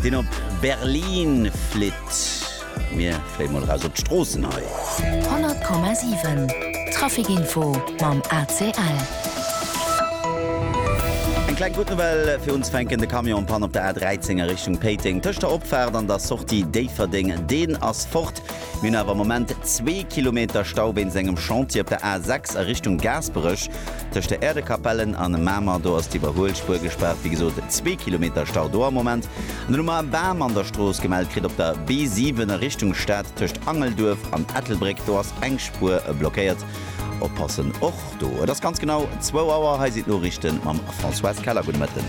Deen op Berlin flitt. Mir fléie mol eraus op d'Stroossen hei. 100,7 Traficinfo mam ACL. Eng kleng gutt Nouvelle fir unzefänken, De Camion en panne op der A13 a Richtung Péiteng tëscht der Opfaart an der Sortie Déifferdeng, deen ass fort. Mir hunn awer am Moment zwee Kilometer Stau wéinst engem Chantier op der A6 a Richtung Gaasperech. Tëscht der Äerdekapellen an Mamer, do ass d'Iwwerhuelspuer gespaart. Wéi gesot, zwee Kilometer Stau do am Moment. An dunn hu mer e Bam an der Strooss gemellt kritt op der B7 a Richtung Stad. Tëscht Angelduerf an Ettelbréck, do ass eng Spuer blockéiert. Oppassen och! Do. Et ass ganz genau zwou Auer. Hei sinn d'Noriichten mam Françoise Keller. Gudde Mëtten.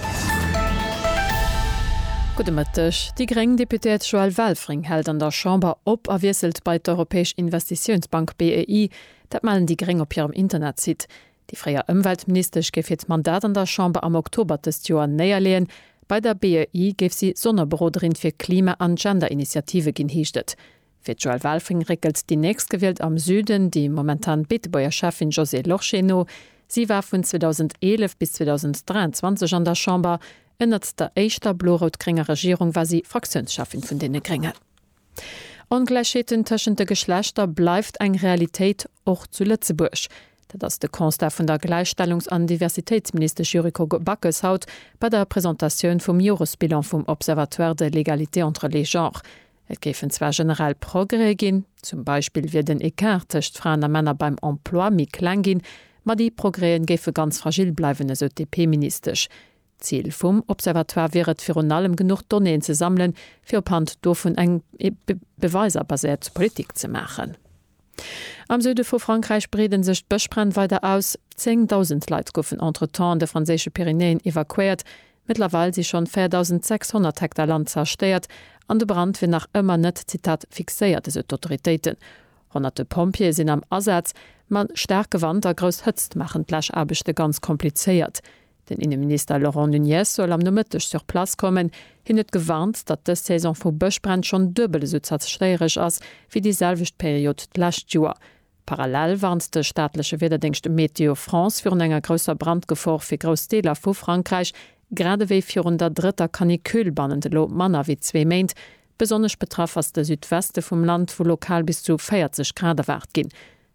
Gudde Mëtteg. Déi gréng Deputéiert Joëlle Welfring hält an der Chamber op a wiesselt bei d'Europäesch Investitiounsbank, BEI. Dat mellen déi gréng op hirem Internetsite. Déi fréier Ëmweltministesch géif hiert Mandat an der Chamber am Oktober dëst Joer néierleeën. Bei der BEI géif si Sonnerberoderin fir Klima an Gender-Initiative ginn, heescht et. Fir d'Joëlle Welfring réckelt déi Nächstgewielt am Süden déi momentan Beetebuerger Schäffin Josée Lorsché no. Si war vun 2011 bis 2023 an der Chamber. Ënnert der éischter blo-rout-grénger Regierung war si Fraktiounsschäffin vun deene Gréngen. Ongläichheeten tëschent de Geschlechter bleift eng Realitéit, och zu Lëtzebuerg. Dat ass de Constat vun der Gläichstellungs an Diversitéitsministesch Yuriko Backes haut bei der Presentatioun vum Joresbilan vum Observatoire de l'égalité entre les genres. Et géifen zwar generell Progrèse ginn, zum Beispill wier den Ecart tëscht Fraen a Männer beim Emploi méi kleng ginn, ma déi Progrèsen géife ganz fragil bleiwen, esou d'DP-Ministesch. D'Zil vum Observatoire wier et virun allem genuch Donnéeën ze sammelen, fir ophand dovun eng beweiserbasiert Politik ze maachen. Am Süde vu Frankräich breede sech d'Bëschbränn weider aus. Zéngdausend Leit goufen entretemps an de franséische Pyrenäen evakuéiert. Mëttlerweil si schonn 4.600 Hektar Land zerstéiert an de Brand wier nach ëmmer net, Zitat, fixéiert, esou d'Autoritéiten. Honnerte Pompjeeë sinn am Asaz, ma staarke Wand a grouss Hëtzt maachen d'Läschaarbechte ganz komplizéiert. Den Inneminister Laurent Nunez soll am Nomëtteg sur place kommen. Hien huet gewarnt, datt dës Saison vu Bëschbränn schonn duebel esou zerstéieresch ass, wéi déi selwecht Period d'lescht Joer. Parallel warnt de staatleche Wiederdéngscht Météo France virun enger grousser Brandgefor fir grouss Deeler vu Frankräich, grad ewéi virun der drëtter Canicule bannent elo manner wéi zwee Méint. Besonnesch betraff ass de Südweste vum Land, wou lokal bis zu 40 Grad erwaart ginn.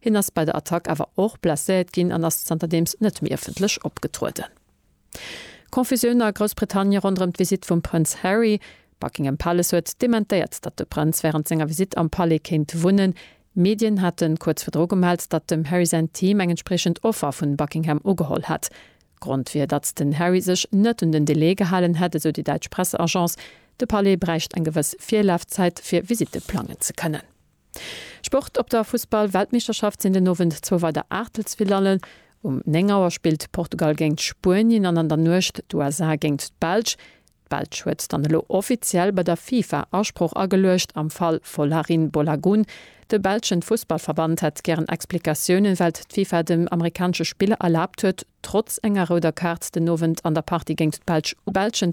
Hien ass bei der Attack awer och blesséiert ginn an ass zanterdeems net méi ëffentlech opgetrueden. Confusioun a Groussbritannie ronderëm d'Visitt vum Prënz Harry. Buckingham Palace huet dementéiert, datt de Prënz wärend senger Visitt am Palais kéint wunnen. Medien hate kuerz virdru gemellt, datt dem Harry säin Team eng entspriechend Offer vun Buckingham ugeholl hätt. Grond wier, datt den Harry sech net un den Delai gehalen hätt, esou déi däitsch Presseagence. De Palais bräicht eng gewëss Virlafzäit, fir Visitte plangen ze kënnen. Sport, Op der Fussball-Weltmeeschterschaft sinn den Owend zwou weider Aachtelsfinallen. Um 9 Auer spillt Portugal géingt Spuenien an an der Nuecht d'USA géingt d'Belsch. D'Belsch huet dann elo offiziell bei der FIFA Asproch ageluecht am Fall Folarin Bolagun. De belschen Fussballverband hätt gären Explikatiounen, well d'FIFA dem amerikanesche Spiller erlaabt huet, trotz enger rouder Kaart den Owend an der Partie géingt d'Belsch uefen ze goen.